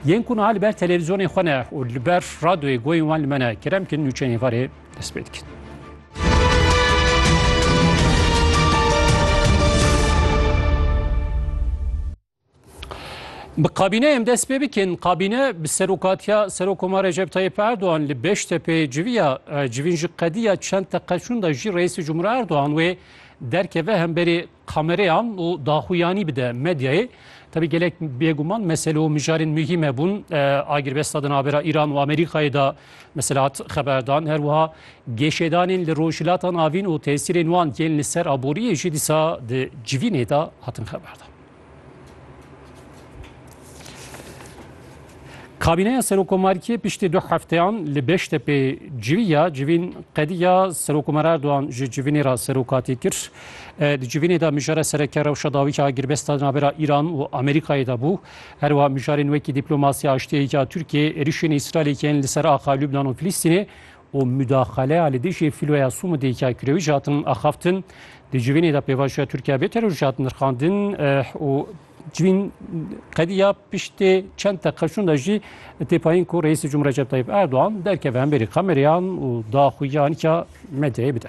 Yên ku niha li ber televîzyonên xwe ne û li ber radyoyê goyên wan li me ne, kerem bikin nûçeyên varê dest pê dikin. Bi kabîne em dest pê bikin. Kabîne bi serokatiya Serokoma Recep Tayyip Erdoğan li Beştepê civiya civîn ji qediya çend teqeçûn da jî Reîsê Cumhur Erdoğan wê derkeve hemberê Kamereyan û daxuyanî bide medyayê. Tevî gelek bêguman mesele û mijarên muhîm hebûn. Agirbesta di navbera Îran û Amerîkayê de mesela hat xeberdan. Her wiha geşêdanên li Rojhilata Navîn û tesîrên wan yên li ser aboriyê jî dîsa di civînê de hatin xeberdan. Kabîneya Serokomarîkê piştî du hefteyan li Beştepê civiya civîn qediya Serokomer Erdogan ji civînê re serokatî kir. Di civînê de mijara sereke rewşa dawî ya girbesta navbera Îran û Amerîkayê de bû. Herwa mijarên wekî dîplomasiya aştiyê ya Tirkiyê, êrişên Îsraîlê yên li ser axa Lubnan û Filîstînê û mudaxaleya li dijî fîloya Sûmidê ya Kirewî jî hatin axaftin. Di civînê de pêvajoya Tirkiye bê teror jî hat nirxandin û civîn qediya piştê çend teqeşûn de jî têpayîn ku Reîsê Cumhur Recep Tayyip Erdogan derkeve hemberî kameryan û daxuya nika medyayê bide.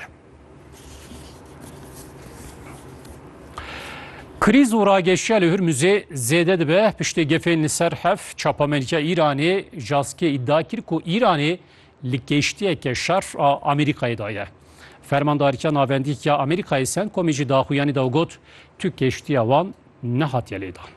Krîz û rageşiya li Hurmuzê zêde dibe piştê gefên li ser hev çapamelîka Îranê Jaskê îdia kir ku Îranê Li kêştiyeke şer a Amerîkayê de ye. Fermandarîtiya Navendî ya Amerîkayê Centcomê jî di axuyanî de got tu kêştiya wan nehatiye lêdan.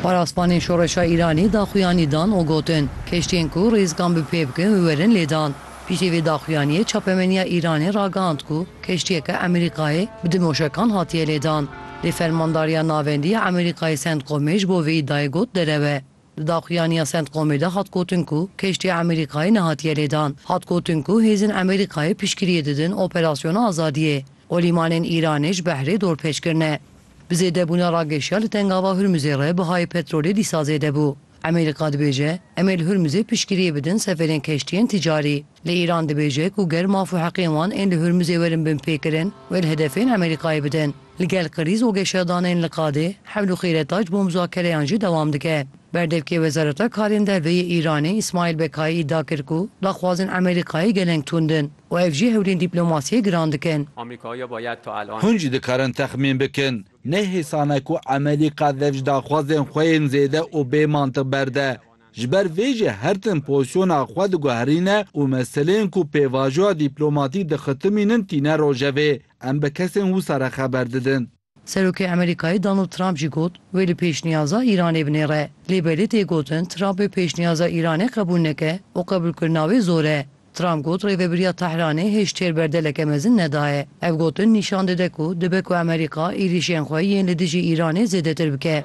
Paraspanên Şoreşa Îranî daxuyanî dan û gotin, keştiyên ku rêzikan bi pê bikin û werin lêdan. Piştî vê daxuyaniyê çapemeniya Îranê ragihand ku keştiyeke Amerîkayê bi du mûşekan hatiye lêdan. Lê Fermandariya Navendî ya Amerîkayê Centcomê ji bo vê îdayê got derew e. Di daxuyaniya Centcomê de hat gotin ku keştiya Amerîkayê nehatiye lêdan. Hat gotin ku hêzên Amerîkayê piştgiriyê didin Operasyona Azadiyê û lîmanên Îranê ji behrê dorpêç kirine. Bi zêdebûna rageşiya li Tengava Hurmuzê re bihayê petrolê dîsa zêde bû. Amerîka dibêje, Em ê li Hurmuzê piştgiriyê bidin seferên keştiyên ticarî. Lê Îran dibêje ku ger maf û heqên wan ên li Hurmuzê werin bin pêkirin, wê li hedefên Amerîkayê bidin. Li gel krîz û geşadanên li qadê, hewl û xîreta ji bo muzakereyan jî dewam dike. Berdevkê Wezareta Karên Derve yê Îranê Îsmaîl Bekayî îdia kir ku daxwazên Amerîkayê geleng tund in û ev jî hewlên dîplomasiyê giran dikin. Hûn jî dikarin texmîn bikin. Ne hêsan e ku Amerîka dev ji daxwazên xwe yên zêde û bê mantiq berde. Ji ber vê jî her tim pozîsyona xwe diguherîne û meseleyên ku pêvajoya dîplomatîk dixitimînin tîne rojevê. Em bi kesên wisa re xeber didin. Serokê Amerîkayê Donald Trump jî got, wê li pêşniyaza Îranê binêre. Lê belê tê gotin Trump ê pêşniyaza Îranê qebûl neke û qebûlkirina wê zor e. Trump got rêvebiriya Tehranê hêj têr berdeleke mezin nedaye. Ev gotin nîşan dide ku dibe ku Amerîka êrîşên xwe yên li dijî Îranê zêdetir bike.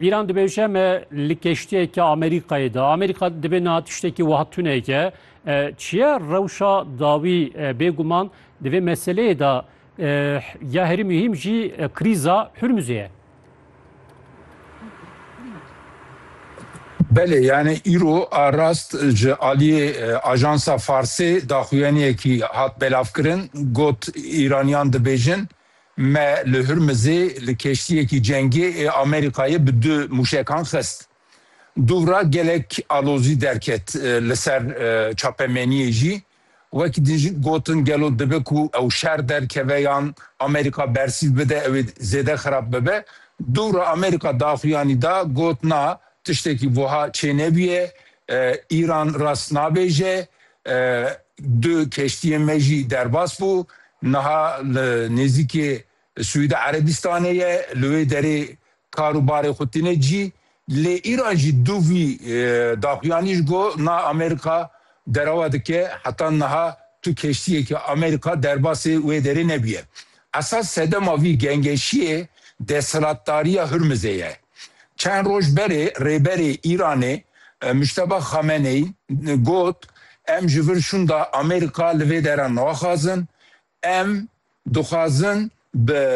Îran dibêje me li keştiyeke Amerîkayê de. Amerîka dibê niha tiştekî wiha tuneke. Çiye rewşa dawî bêguman di vê meseleyê de ya herî muhîm jî krîza Hurmuzê ye. Belê yani îro a rast ji aliyê ajansa Farsê daxuyaniyekî hat belavkirin got Îraniyan dibêjin Me li Hurmizê li keştiyekî cengê ê Amerîkayê bi du mûşekan xist. Dûvra gelek alozî derket li ser çapemeniyê jî. Wek din jî gotin gelo dibe ku ew şer derkeve yan Amerîka bersîv bide ew ê zêde xirab bibe. Dûvra Amerîka daxuyanî da got na tiştekî wiha çênebûye, Îran rast nabêje, du keştiyên me jî derbas bû, Niha li nêzîkê Siûdî Erebîstanê ye, li wê derê kar û barê xwe tîne cî. Lê îran jî du vî daxuyanî ji go na Amerîka derewa dike. Heta niha tu keştiyekî Amerîka derbasê wê derê nebûye. Esas sedema vî gengeşiyê desthilatdariya Hurmizê ye. Çend roj berê Rêberê Îranê Mujteba Xameneyî got, Em ji vir şûnda Amerîka li vê dera naxwazin. Em dixwazin bi.